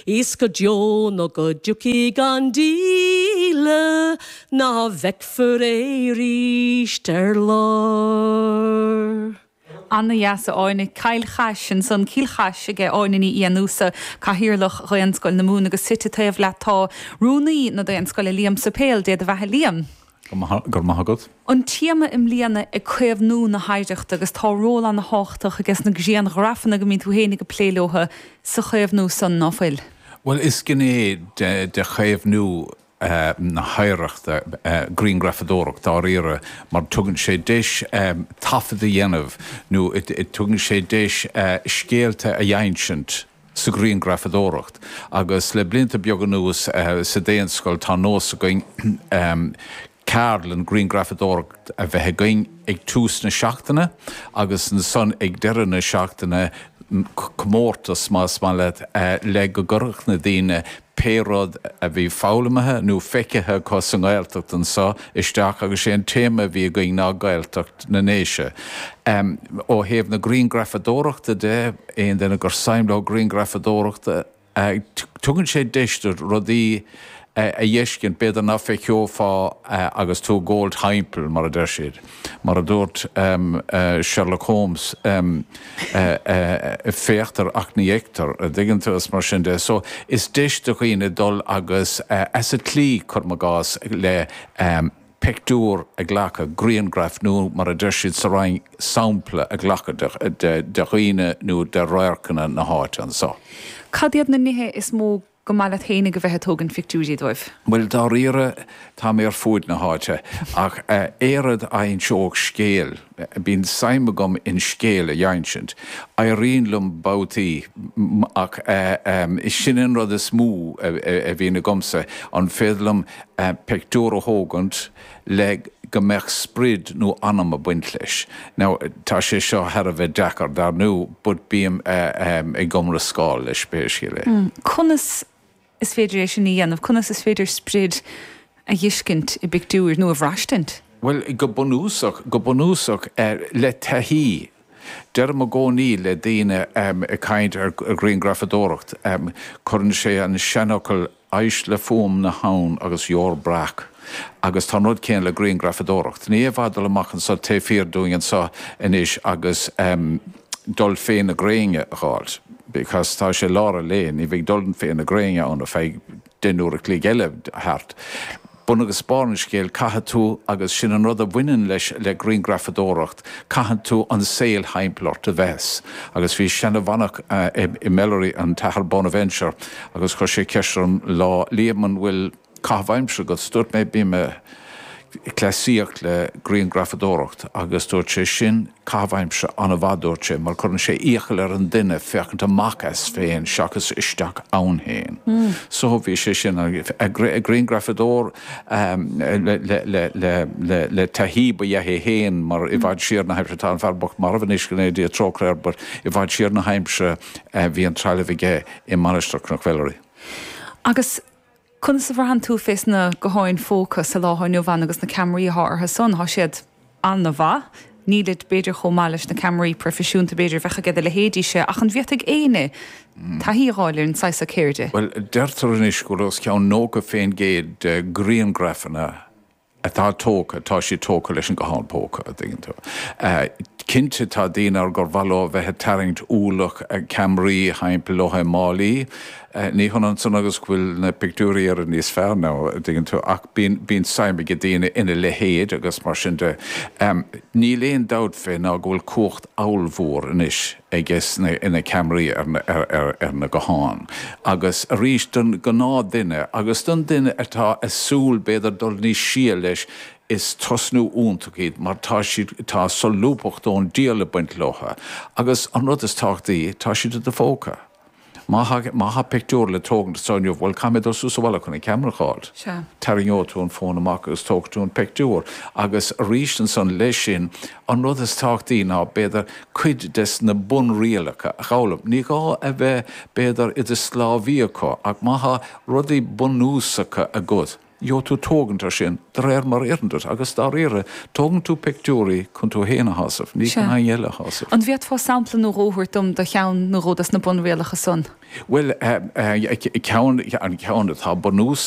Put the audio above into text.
Is go deo nó go dtiocfaidh an díle ná feicfear é arís ar lár. Ana dheas a Áine. Cill Chais, ansan Cill Chais aige Áine Ní Fhiannúsa, Cathaoirleach Dhaonscoil na Mumhan agus suite taobh leat tá Rúnaí na Daonscoile Liam Suipéil, Dé do bheatha Liam. Go raibh maith agat. an téama i mbliana ag caomhnú na hoidhreachta agus tá ról ana thábhachtach aige sna grianghrafanna go mbíonn tú féin ag plé leotha sa chaomhnú san, ná fuil? Bhuel is gné de chaomhnú na hoidhreachta griangrafadóireacht dáiríre mar tugann sé deis taifead a dhéanamh nó tugann sé deis scéalta a dh'ínsint, sa ghrianghrafadóireacht agus le blianta beaga anuas sa Daonscoil tá nós againn ceardlann ghrianghrafadóireacht a bheith againn ag tús na seachtaine agus ansan ag deireadh na seachtaine comórtas más maith leat le go gcuirfeadh na daoine pé rud a bhí foghlaimithe nó feicthe acu sa nGaeltacht anso isteach agus sé an téama a bhí againn ná Gaeltacht na nDéise. Ó thaobh na grianghrafadóireachta de, aon duine gur saim leo grianghrafadóireachta, tugann sé deis duit rudaí a dh'fheiscint b'fhéidir ná feiceofá agus tú ag gabháilt timpeall, mar a deir siad. Mar a dúirt Sherlock Holmes, féachtar ach ní fheictear, a dtuigeann tú, is mar sin de. So, is deis do dhaoine dul agus as an tslí, cuirim i gcás, le pictiúr a ghlacadh, griangraf, nó mar a deir siad sa Rinn, sampla a ghlacadh de dhaoine nó de radharcanna na háite anso. Cad iad na nithe is mó Go maith leat fhéinig a bheith ag tógaint pictiúirí dóibh. Bhuel, dáiríre, tá mé ar fuaid na háite, ach aon rud a inseodh scéal, bíonn suim agam in scéal a dh'innsint. Éiríonn liom babhtaí, ach ehm, sin an rud is mó a bhíonn agamsa, an féidir liom pictiúr a thógaint, le go mbeadh sprid nó anam ag baint leis. Now, tá sé seo thar a bheith deacair, dar ndú, but bím ag iomrascáil leis, pé scéal é. Conas is féidir é sin a dhéanamh? Conas is féidir sprid a dh'fheiscint i bpictiúr nó a bhraistint? Bhuel, go bunúsach, go bunúsach, le taithí. Deirim i gcónaí le daoine ag caint ar ghriangrafadóireacht, cuireann sé an seanfhocal éist le fuaim na habhann agus gheobhair breac agus tá an rud céanna le griangrafadóireacht. Ní fhéadfá dul amach anso, taobh thiar dúinn anso anois agus dul fé na gréine a dh'fháilt because tá sé lár an lae, ní bheidh dul fé na gréine ann if I den uair a chloig eile, thart. Bun agus barr an scéil, caithfidh tú, agus sin an rud a bhaineann leis, le grianghrafadóireacht, caithfidh tú an saol thimpeall ort a fheiscint. Agus bhí seana-mhanach i Melleray, an tAthair Bonaventure, agus chuir sé ceist orm lá, Liam, an bhfuil caitheamh aimsire agat? 's dúirt mé, Bím ag cleasaíocht le grianghrafadóireacht, agus dúirt sé, Sin Caitheamh aimsire an-mhaith, dúirt sé, mar cuireann sé iachall ar an duine féachaint amach as féin seachas isteach ann féin. So bhí sé sin griangrafadóir le taithí, ba ea é féin, mar i bhfad siar san aimsir, tá an fear bocht marbh anois, go ndéana Dia trócaire air, but i bhfad siar san aimsir bhí an trealamh aige i Mainistir Chnoc Mhellerí. Agus Conas a bhraitheann tú fé sna gutháin phóca sa lá athá inniu ann agus na ceamaraí athá orthu san? Thá siad ana-mhaith. Nílid b'fhéidir chomh maith leis na ceamaraí proifisiúnta b'fhéidir a bheadh aige do leithéidí-se ach an bhféadfadh éinne taithí a dh'fháil ar an saghas seo ceirde? Bhuel, deirtear anois go bhfuil os cionn nócha fén gcéad de ghriangraifeanna atá tógtha, tá siad tógtha leis an nguthán póca, a dtuigeann tú. Cinnte tá daoine ann gur mhaith leo a bheith ag tarraingt ualach ceamaraí thimpeall leo i málaí, ní hionann san agus go bhfuil na pictiúirí riamh níos fearr, nó a dtuigeann tú, ach bíonn, bíonn suim ag daoine ina leithéid agus mar sin de. Níl aon dabht fé ná go bhfuil cumhacht ollmhór anois aiges na ceamaraí ar na gutháin agus arís don gnáthdhuine agus don duine atá ag súil b'fhéidir dul níos sia leis is tosnú iontach iad mar tá siad tá solúbthacht ón diabhal ag baint leo agus an rud is tábhachtaí tá siad i do phóca. Má, má thá pictiúr le tógaint anseo inniu, bhuel, caithfidh mé dul suas abhaile chun an ceamara a fháil. Sea. Tarraingeoidh tú an fón amach agus tógfaidh tú an pictiúr. Agus arís ansan leis sin, an rud is tábhachtaí ná, b'fhéidir, cuid des na bunrialacha a dh'fhoghlaim. Ní gá a bheith, b'fhéidir, i do sclábhaí acu, ach má thá rudaí bunúsacha agat, féadfaidh tú tógaint ar sin de réir mar a oireann duit agus, dáiríre, tógann tú pictiúirí chun tú féin a shásamh, ní chun éinne eile a shásamh. An bhféadfá sampla nó dhó a thabhairt dom de cheann nó dhó de na bunrialacha san? Bhuel, an ceann atá bunús.